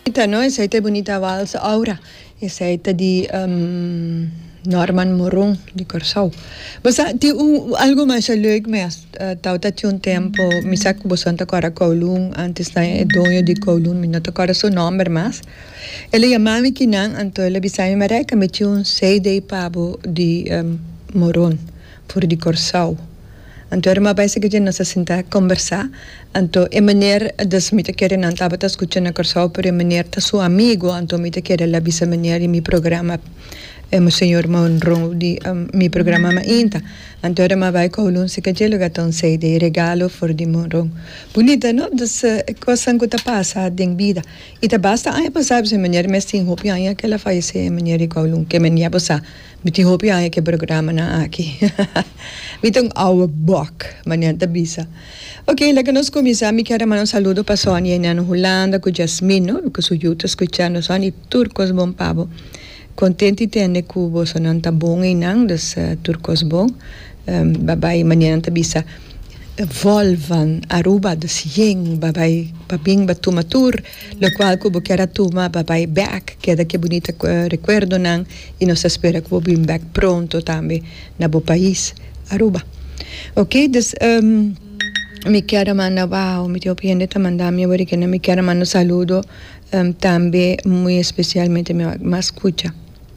Bonita no esey ta e Bonita Vals Aura esey ta di Norman Morun di Corsou bo sa tin un algo masha leuk mes tawata tin un tempo mi sa ku boson ta kora kowloon antes nan e doño di kowloon mi no ta kora su nomber mas el a yama mi ki nan anto el a bisa mi Mareika mi tin un CD pa bo di Morun for di Corsou. Anto e rumá bai sigui dje nos a sintá kombersá. Anto e meneer dus mi ta kere nan tabata skucha na Kòrsou pero e meneer ta su amigu anto mi ta kere la bisa meneer di mi programa e Monseñor Monroe di mi programa mainta. Anto e rumá bai kowlun si ka dje lugá ta un CD regalo for di Monroe. Bunita no? Dus e kosnan ku ta pasa den bida. I ta basta aña pasá bisa e meneer mes tin hopi aña ke el a fayesé e meneer di kowlun ke mi a bisa. Mi tin hopi aña ke programanan aki. Mi ta un ouwe bòk, Manian ta bisa. Ok, laga nos kuminsá. Mi kier a manda un saludo pa Sonia i Nano Hulanda ku Jasmin, no? Ku su yu ta skuchando. Sonia, e tur kos bon pa bo. Kontent di tende ku bosonan ta bon einan, dus tur kos bon. Ba bai, Manian ta bisa. Vòlvan Aruba, dus yen ba bai pa bin ba tuma tur. Lo cual cu bo kier a tuma pa bay bek, keda ki e bunita recuerdonan y nos ta spera cu bo bin bek pronto tambe na bo pais Aruba. Ok, dus mi kier a manda, wao, mi tin hopi hende ta manda mi awor kende, mi kier a manda un saludo tambe muy especialmente mi mas cucha.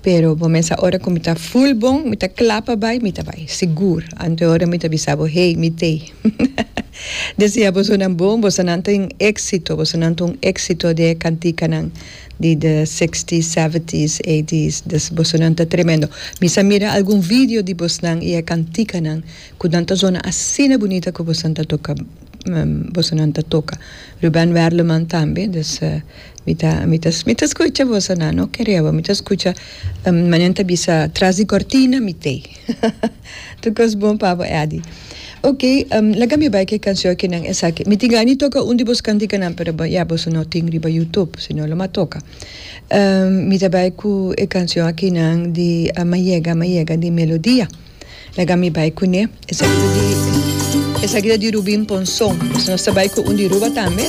Pero bo mester a ora ku mi ta full bon, mi ta kla pa bai, mi ta bai. Sigur. Anto e ora mi ta bisa bo, Hei, mi tei. Desea bosonan bon, bosonan ta un éksito, bosonan ta un éksito di e kantikanan di de sixties, seventies, eighties. Des bosonan ta tremendo. Mi sa mira algun video di bosnan i e kantikanan ku nan ta zona asina bunita ku bosonan ta toka. bosonan ta toka Ruben Werleman tambe dus mi ta mi ta mi ta skucha bosonan no ke rewa mi ta skucha manen ta bisa tras di kortina mi te tur kos bon pa bo Eddy ok laga mi bai ke kanshon kinan esaki mi tin gana toka un di bos kantikanan pero ya boso no tin riba yutub si no lo ma toka mi ta bai ku e kanshon akinan di Mayega Mayega di Melodia. Laga mi bai kuné. Esaki ta di Rubin Ponson. Nos ta bai ku un di Ruba tambe.